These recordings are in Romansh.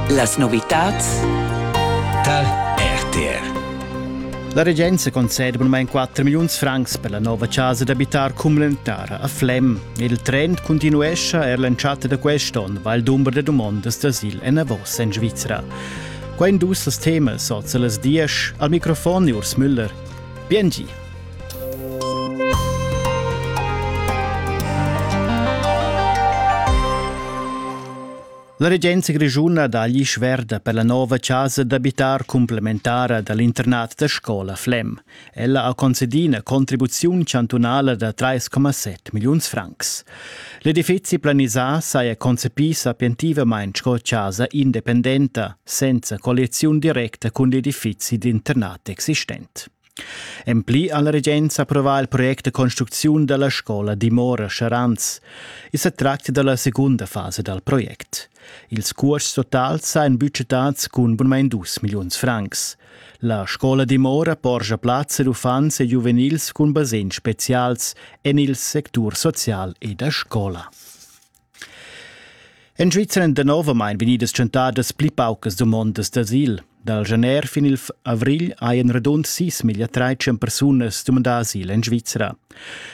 Las novitads tar RTR. La regenza concede bunamain 4 milliuns francs per la nova chasa d'abitar Cumlentara a Flem. Il trend continuescha er l'entschatta da quest'onn, weil dumber da domondas d'asil enavos en Svizra. Qua indus las temas oz a las 10. Al microfon Urs Müller. Biengi. La regenza grischuna dagli sverda per la nova casa d'abitar complementara dall'internat da scola Flem. Ella ha concedi una contribuzione chantunale da 3,7 million francs. L'edifici planisà saja concepì sapientivamente sco casa independenta, senza colliazione directa con l'edifici d'internat existent. En pli ha la regenza approvà il project da construcziun dalla scola dimora Charanz. I sa tracta dalla secunda fasa dal project. Ils cuosts totals ein budgetads cun bunmein dus milliuns francs. La scola dimora porscha plazza ad uffants e giuvenils cun basegns specials en il sectur social e da scola. En Svizzera èn danovamain vegnidas tschentadas pli paucas dumondas d'asil. Dal gener fin il avrigl hajan radund sis miglia trais persunas dumandà asil en Svizzera.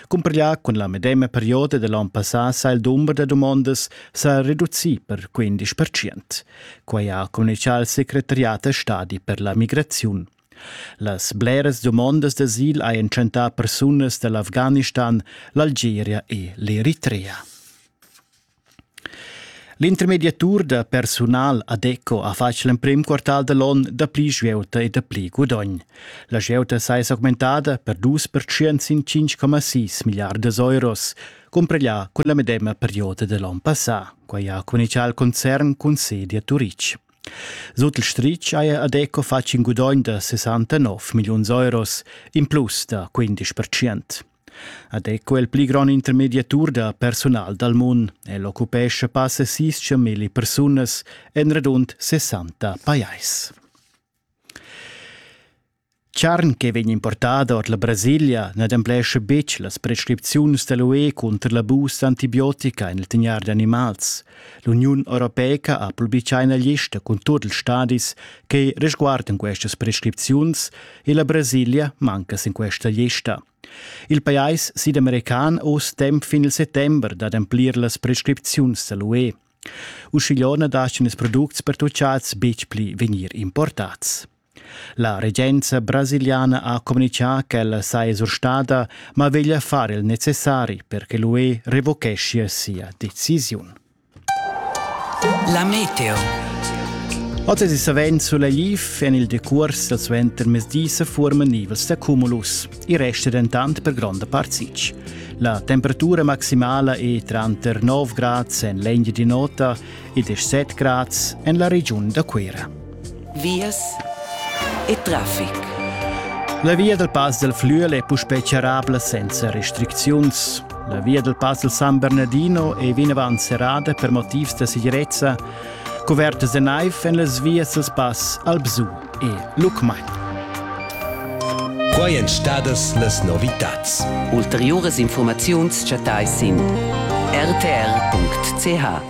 Cumparglià cun la medema perioda da l'onn passà sa il dumber da dumondas sa reducì per 15 percent. Quai ha communitgà il secretariat a stadi per la migraziun. Las bleras dumondas d'asil hajan tschentà persunas da l'Afghanistan, l'Algeria e l'Eritrea. L'intermediatur da persunal ADECO ha fatg l'emprim quartal da l'onn dapli svieuta e dapli gudogn. La svieuta saja augmentada per 2% sin 5,6 milliardas euros, cumpareglià cun la medema perioda da l'onn passà. Quai ha communitgà il concern cun sedi a Turitg. Sut il stritg haja Adeco fatg in gudogn da 69 milliuns euros, in plus da 15 percent. Adeco è il pli grond intermediatur da personal dal mund. El occupescha passa sis milli persunas en radund 60 pajais. Charn che vegn importada ord la Brasilia n'ademplescha betg las prescripziuns da l'UE cunter l'abus d'antibiotica en il tegnair d'animals. L'Uniun europeica ha publitgà ina lista cun tut ils stadis che resguardan questas prescripziuns e la Brasilia manca sin questa lista. Il pajais sidamercan ha uss temp fin il settember d'ademplir las prescripziuns da l'UE. Uschigliona dastgan ils products pertutgads betg pli vegnir importads. La regenza brasiliana ha communitgà ch'ella saja surstada, ma veglia far il necessari per che l'UE revocheschia sia decisiun. La meteo. Oz è savens sulegl en il decurs dal suentermezdi se forman nivels da cumulus. I resta dentant per gronda part sitg. La temperatura maximala è tranter 9 grads en l'Engia di Nota e 17 grads en la regiun da Cuera. vias e traffic. La via dal Pass del Flüel è puspè charrabla senza restricziuns. La via dal Pass del San Bernardino è vinavant serrada per motivs da segirezza, covertas da naiv en las vias dal Pass Albsu e Lucmagn. Quai èn stadas las novitads. Ulteriuras informaziuns chattais sin rtr.ch.